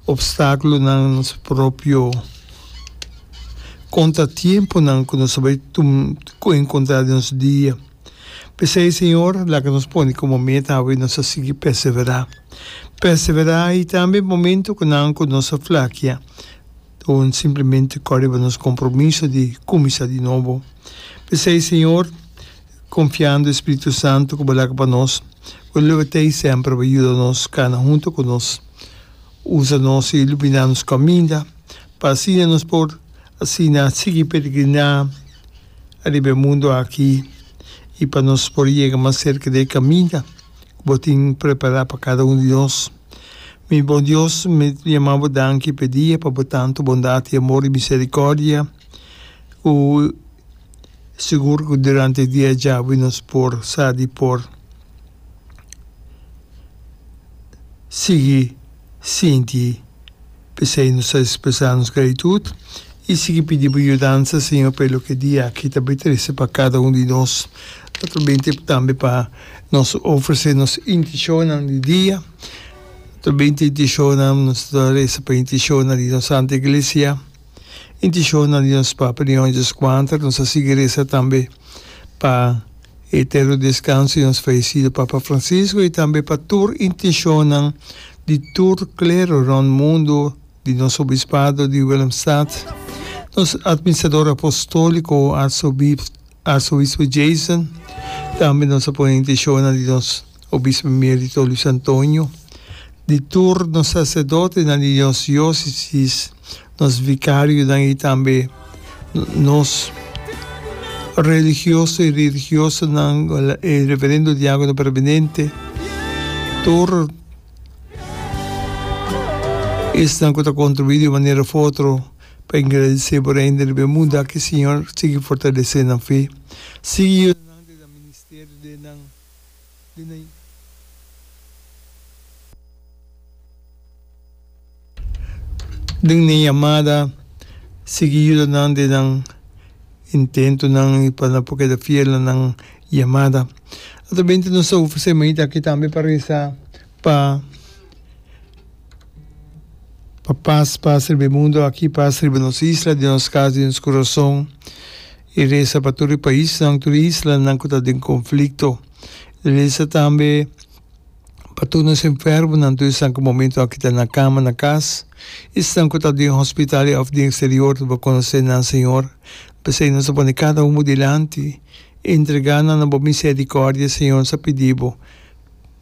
Opstáculonan nos propio contratiemponan cu nos a bay encontra den nos dia. P'esey, Señor, laga nos pone como meta awe nos a sigui perseverá. Perseverá y tambe momentonan cu nos a flakia con simplemente cor riba nos compromiso di cuminsa di nobo. P'esey, Señor, Konfiando e Spiritu Santu ku bo laga pa nos, bo lo tei semper bo yuda nos kana huntu ku nos. Usa nos i luminá nos kaminda, pa asina nos por asina sigui peregriná ariba e mundu aki i pa nos por yega mas serka di e kaminda ku bo tin prepará pa kada un di nos. Mi bon Dios, mi ta yama bo danki pa e dia pa bo tantu bondat i amor i miserikòrdia ku Sigur cu durante e dia djabi nos por sa di por sigui sinti p'esey nos ta expresa nos gratitud y sigui pidi bo yudansa, Señor, p'e loke dia aki ta bay trece pa cada un di nos. Ta ta bay tempo tambe pa nos ofrece nos intencionnan di dia, ta bay te intencionnan, nos ta reza pa intencionnan di nos Santa Iglesia. Inti shownan di nos Papa di Hondjes Quantar nos a sigui resa tambe pa e eterno descanso di nos fallecido Papa Francisco y tambe pa tur intencionnan di tur clero rond mundo, di nos Obispado di Willemstad, nos Administrador Apostolico Arzobispado, Arzobispo Jason, tambe nos a pone intentiona di nos Obispo Premier di Toro Luis Antonio, di tur nos sacerdotenan di nos diocesis, nos vicarionan y tambe nos religioso y religiosanan, e reverendo diacono permanente, tur esnan cu ta contribui di un manera of otro. Pa engradisé por hende riba e mundu aki, Siñor, sigui fortalesé nan fe. Sigui yuda nan den nan ministerio den nan den nan den nan yamada. Sigui yuda nan den nan intentonan i pa nan por keda fiel na nan yamada. Ato bende nos ta ufrisé mainta aki tambe pa resa pa. Pa pas pas riba e mundu aki, pas riba nos isla, den nos kas, den nos kurason, i resa pa tur e paisnan, tur e islanan ku ta den konflikto. I resa tambe pa tur nos enfermonan, tur esnan ku momentu aki ta na kama na kas, esnan ku ta den hospital òf den eksterior ta por konosé nan, Señor. P'esei nos ta pone kada un bo dilanti, entregá nan na bo miserikòrdia, Señor, nos a pidi bo.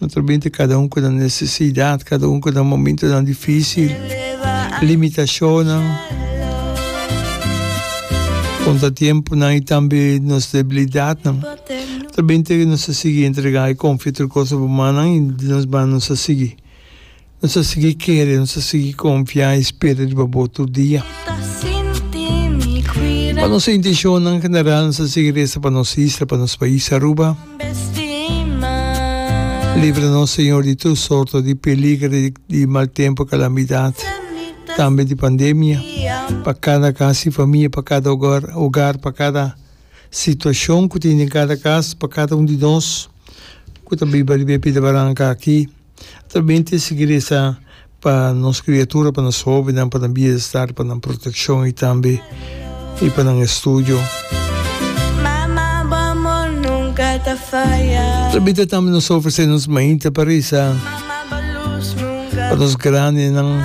No ta binte kada un ku nan nesesidat, kada un ku nan momentunan difísil, limitashonnan, kontratiempunan i tambe nos debilidatnan. Ta binte nos a sigui entregá i konfiá tur kos na bo mannan i di nos man nos a sigui. Nos ta sigui kere, nos ta sigui konfia i spera riba Bo tur dia. Pa nos intishonnan general, nos ta sigui resa pa nos isla, pa nos pais Aruba. Libra nos, Señor, di tur sorto di peliger, di mal tempu, kalamidat, tambe di pandemia, pa kada kas i famia, pa kada ogar, ogar, pa kada situashon ku tin den kada kas, pa kada un di nos ku ta biba riba e pida baranka aki. Ta bin tin sikeresa pa nos kriatura, pa nos hobennan, pa nan bienestar, pa nan protekshon i tambe i pa nan estudio. Ta bita tambe nos ta ofresé nos mainta pa resa pa nos grandinan,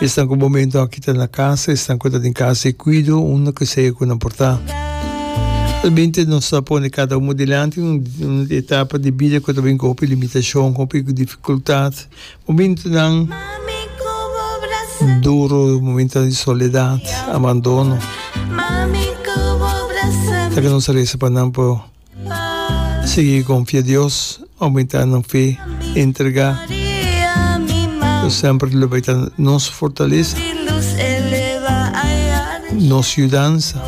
esnan ku bo momentu aki. Ta na casa, esnan cu ta den casa y cuido un na cu sea cu nan por ta. Ta bin te nos ta pone cada uno dilanti un etapa di bida cu ta bin cu hopi limitacion, cu hopi dificultad, momento nan duro, momento di soledad, abandono. Ta cu nos ta reza pa nan por. Sigui konfia Dios, oumenta nan fe, entrega ta semper lo bai ta nos fortalesa, nos yudansa.